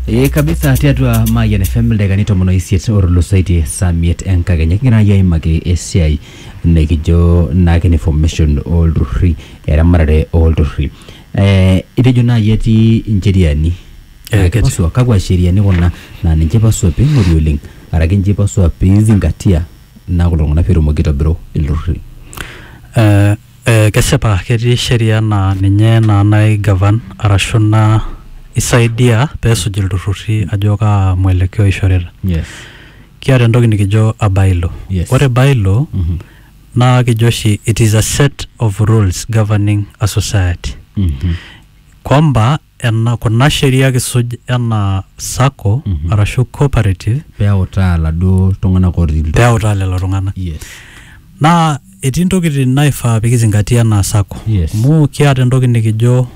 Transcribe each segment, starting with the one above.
Ee kabisa tiatua Mayian FM ildakikani tomon oisiet otulusoitie saa miet enkakenya kigira naaji aimaki esiai nikijo naake ne formation olturruri eramatare olturruri eh, itejo naaji etii incheriani Eh, Naa ketii. kipasua kakwa sheriani kuna naa ninche ipasua ping'ori oleng araki ninche ipasua pizingatia naa kulo tung'anak petumoki aitobiru ilturruri Eh, Eh, kesipa ketii sheria naa ninye naa nai govern arashu naa isaidia peesuj ilturrurri ajo kaa mwelekeo ishorita Yes. kiata entoki nikijo a bylaw Yes. ore bylaw Mhm. naa kijo oshi it is a set of rules governing a society Mhm. kwamba ena kuna sheria kisuj enaa sacco arashu cooperative peutaa laduo tung'anak otii ilturruri. peutaa lelo tung'anak Yes. naa etii ntokitin naifaa pikizingatia enaa sacco Yes. amu kiata entoki nikijo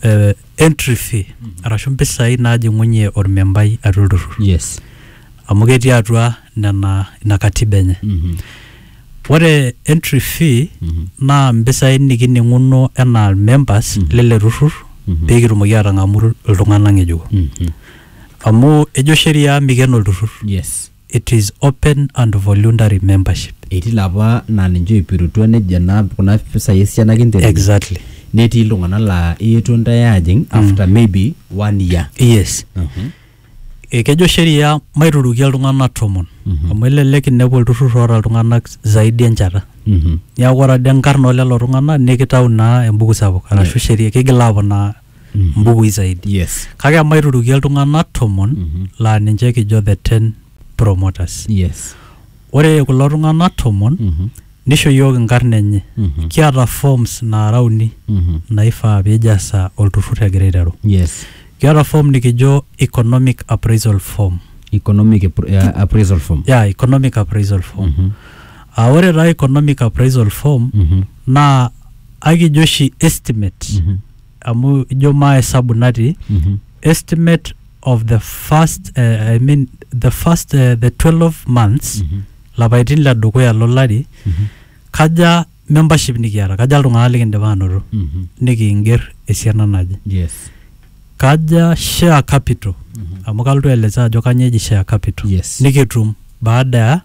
eh, entry fee arashu mpisai najing'unye ormembai atua olturrur Yes. amu ketii atua nena ina katiba enye Mhm. Ore entry fee Mhm. naa mpisai nikining'uno enaa members Mhm. lele turrur Mhm. pee kitumoki aatang'amu iltung'anak ng'ejuko. Mhm. Amu ejo sheria mikeno olturrur. Yes. It is open and voluntary membership. Etii ilapa naa ninche oipirutua nejo naa kuna pisai esiana kinterunye. Exactly. Netii iltung'anak laa eetuo intae aajing after maybe one year. Yes. Mhm. Ekejo sheria maiturukie iltung'anak tomon Mhm. amu elelek inepu olturrur oota iltung'anak zaidi enchata Mhm. niaku ore ade nkarn olelo tung'anak nikitau naa embuku sapuk arashu Yes. sheria kigil aponaa Mhm. mbukui zaidi Yes. kake emaiturukie iltung'anak tomon Mhm. laa ninche kijo the ten promoters Yes. ore kulo tung'anak tomon Mhm. Neisho iyiook inkarn enye. Kiata forms naara uni naifaa pee eijasa olturrur egira aiteru. Yes. Kiata form nikijo economic appraisal form. Economic appraisal form. Yeah, economic appraisal form. Aa ore taa economic appraisal form naa ekijo oshi estimate. amu ijo maa esabu natii Mhm. estimate of the first uh, I mean the first uh, the 12 months Mhm. lapaitin le dukuya lo lari Mhm. kaja membership nikiata kaja iltung'anak likindipa anoto Mhm. nikiinger esiana naje yes kaja share capital Mhm. amu kalotu aeleza ajo kanyoo eji share capital Yes. nikitum baada ya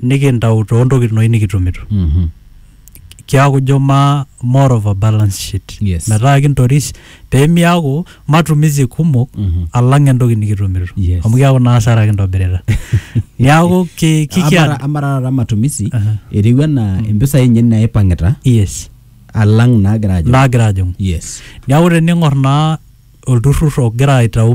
nikintau too ntokitin oshi nikitumito Mhm. kiaku ijo ma more of a balance sheet Yes. metaa kintoris pemiaku matumizi kumok Mhm. alang entoki nikitumito Yes. amu kiaku naa asara kintobirita niaku ki- kikiata Amara- amara taata matumisi Aha. etiu anaa impisai enye naipang'ita yes alang naagira ajo naagira ajing'u yes niaku tening'or naa olturrur ogira aitau